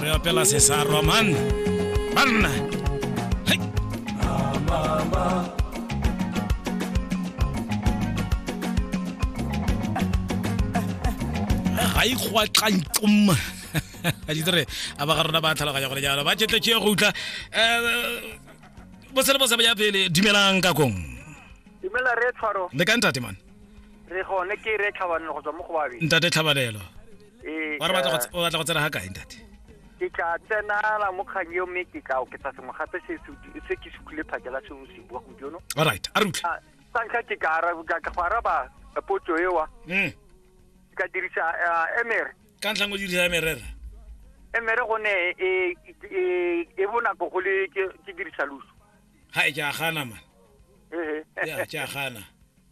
re opela sesarwa man banna Hai. ga ikgwatlantsom a ditse re a ba ga rona ba tlhaloganya gore jalo ba tšetletse go utlwa um bosele bo sebaya pele dumelang ka kong dumela re tshwaro le ka ntate man re gone ke re tlhabanelo go tswa mo go babe ntate tlhabanelo Ee, wa re batla go tse- o batla go tsena ga kae ntate ke tla tsenala mo kgang eo mme ke tla oketsa sengwe gape se se- se ke se tlile phakela se o se bua gompieno all right a re utlwe Ah, sa ntlha ke ka ara- ka- ka go araba potso ewa Mm. ke ka dirisa ah, emere ka ntlha ngo dirisa merera emere gone e e e bonako go le ke ke dirisa luso ga e ke a gana man ehe ya ke a gana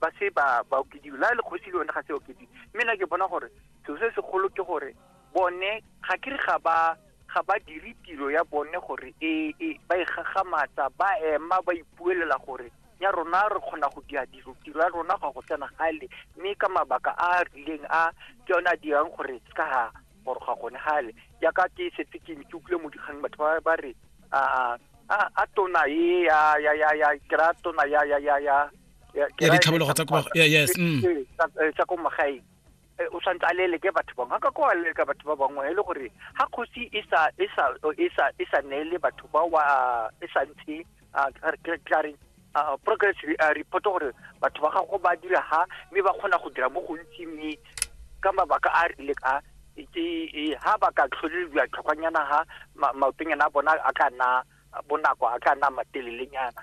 ba se ba ba okediwe la le kgosi le yone ga se okediwe mme na ke bona gore seo se segolo ke gore bone ga ke re ga ba ga ba dire tiro ya bone gore e, e ba e gagamatsa ba ema ba ipuelela gore ya rona re kgona go dira dilo tiro ya rona ga go tsena gale mme ka mabaka a a rileng a ke yone a dirang gore se ka ga gore ga gone gale jaaka ke setse ke ke utlwile mo dikgang batho ba ba re a a a tona e ya ya ya ya kera tona ya ya ya ya ya ditlhabologo tsa ko yes mm. eh, tsa ko magaeng eh, o tshwanetse a leleke batho bangwe ka ko a leleka batho ba bangwe e le gore ga kgosi e sa e sa e sa e sa neele batho ba wa e sa ntshe a clareng progress report gore batho ba gago ba dira ha mme ba kgona go dira mo gontsi mme ka mabaka a rile ka ke ha ba ka tlholelwa tlhokwanyana ha maotonyana a bona a ka nna bonako a ka nna matelelenyana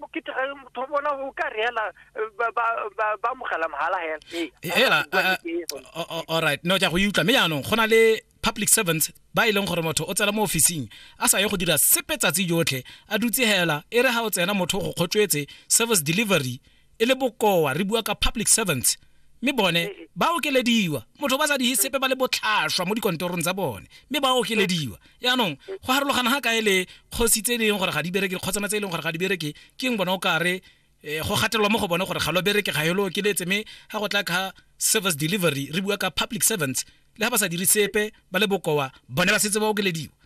mokete ga motho bona o ka reela eh, ba mogala mogala hela eh, eh, alright no ja go utlwa mme jaanong go na le public servants ba e leng gore motho o tsena mo ofising a sa ye go dira sepe tsatsi jotlhe a dutse hela e re ga o tsena motho go kgotswetse service delivery e le bokoa re bua ka public servants mme bone eh, eh. ba okelediwa motho ba sa di sepe ba le botlhaswa mo dikontorong tsa bone mme ba okelediwa yaanong go harologana ga kae le kgosi tse e leng gore ga di bereke dikgotsana tse e leng gore ga di bereke ke eng bona o kare eh, go gatelelwa mo go bone gore ga lo bereke ga elo okeletse mme ga go tla ka service delivery re bua ka public servants le ga ba sa dire sepe ba le bokoa bone ba setse ba okelediwa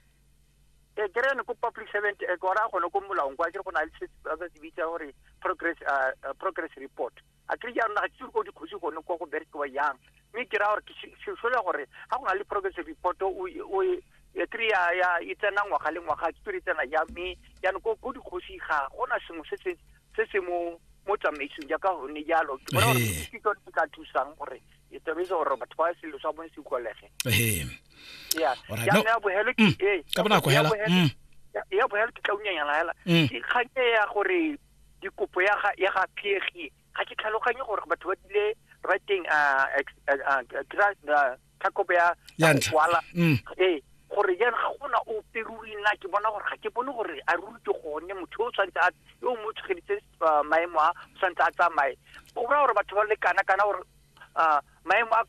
e ke re ne ko public servant e gore a gone ko molaong kwa ke go na le se ba se bitsa gore progress uh, uh, progress report a ke ja rona ga tsitse go dikgosi gone kwa go berekiwa yang mme ke ra gore ke sesole gore ga go na le progress report o o ya tiri ya ya e tsena ngwaga le ngwaga ke tiri tsena ya mme ya no ko go dikgosi ga go na sengwe se se se se mo mo tsamaisong jaaka gone jalo ke bona gore ke tsone ka thusang gore e tobetse gore batho ba selo sa bone se utlwalege ee ya ya bogelo ke mm. ee ka bonako hela mm. ya bogelo ke tla unyanyana hela mm. ke kganye ya gore dikopo ya ga ya ga phegi ga ke tlhaloganye gore batho ba dile writing uh uh uh tlhakobo ya ya ntlha ee gore jang ga gona o peruri nna ke bona gore ga ke bone gore a ruri ke gone motho o tshwanetse a yo mo tshogeditse maemo a tshwanetse a tsamaye go raya gore batho ba lekana kana gore maemo a ko